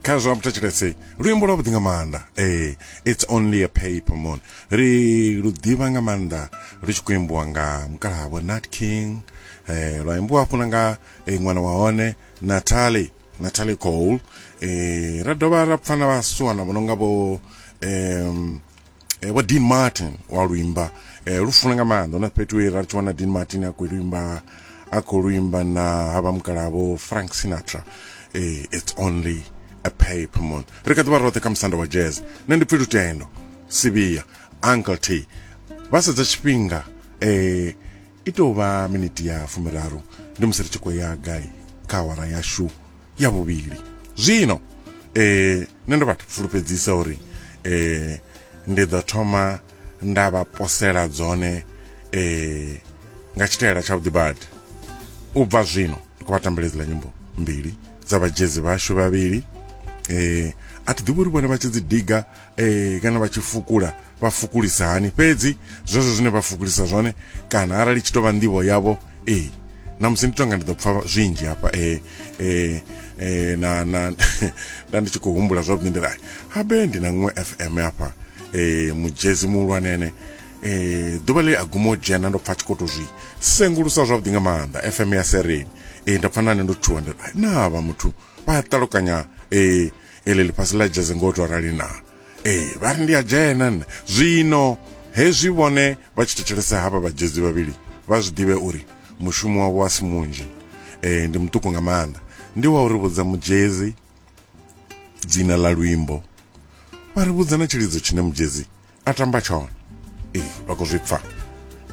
kha zwa vhuthetshelese luimbo lwa vhuḓi nga maanḓa ee it's only a paper moon ri lu ḓivha nga maanḓa lu tshi khou imbiwa nga mukalahavho nat king eh lwa imbiwa hafhuna nga eh, ṅwana wa hone natali natali cole eh ra dovha ra pfana vhasuwana vho no nga vho um eh, wa dean martin wa luimba eh, lu funa nga maanḓa na fhethu e ra tshi wana dean martin a khou luimba a khou luimba na havha mukalavo frank sinatra eh, it's only a paper moon ri kha ḓi vha roṱhe kha musanda wa jazz nṋe ndi pfi lutendo sivhiya uncle t vha sedza tshifhinga eh, I tou vha miniti ya fumiraru ndi musi ri tshi khou ya gai kha awara yashu ya vhuvhili zwino eh nṋe ndo vha fulufhedzisa uri eh ndi ḓo thoma nda vha posela dzone eh nga tshitaela tsha vhuḓi badi u bva zwino ndi khou vha tambela idziḽa nyimbo mbili dza vhajezi vhashu vhavhili eh a thi ḓivhi uri vhone vha tshi dzi diga e, kana vha tshi fukula vha fukulisa hani fhedzi zwezwo zwine vha fukulisa zwone kana arali tshi tovha nḓivho yavho e na musi ndi tonga ndi ḓo pfa zwinzhi hafha e e e na na nda ndi tshi khou humbula zwavhuḓi ndi rai habe ndi na ṅwe fm hafha e mujezi muhulwanene e ḓuvha ḽi a guma u dzhena ndo pfa tshi khou to zwi sengulusa zwavhuḓi nga maanḓa fm ya sereni e nda pfa nane ndo tshuwa ndi rai na vha muthu vha ṱalukanya e ili ḽifhasi ḽa dzheze ngo to arali na ee vha ri ndi a dzhena nṋe zwino hezwi vhone vha tshi thetshelesa havha vhadzhedzi vhavhili vha zwi ḓivhe uri mushumo wavho a si munzhi um ndi muṱuku nga maanḓa ndi wa uri vhudza mudzhedzi dzina ḽa luimbo vha ri vhudza na tshilidzo tshine mudzhedzi a tamba tshone ee vha khou zwi pfa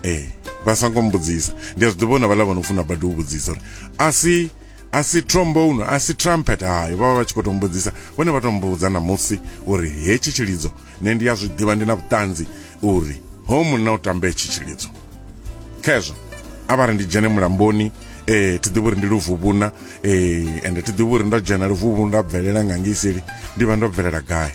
ee vha songo mbudzisa ndi a zwi ḓivha na vhaḽa vha no funa badi u vhudzisa uri a si a si trombone a si trumpet hayo vha vha vha tshi khou to mbudzisa vhone vha to mbudza na musi uri hetshi tshilidzo nṋe ndi a zwi ḓivha ndi na vhuṱanzi uri ho munna u tamba hetshi tshilidzo khezwo a vha ri ndi dzhene mulamboni eh thi ḓivhi uri ndi luvhuvhuna eh ende thi ḓivhi uri ndo dzhena luvhuvhuna nda bvelela nga ngiseli ndi vha ndo bvelela gai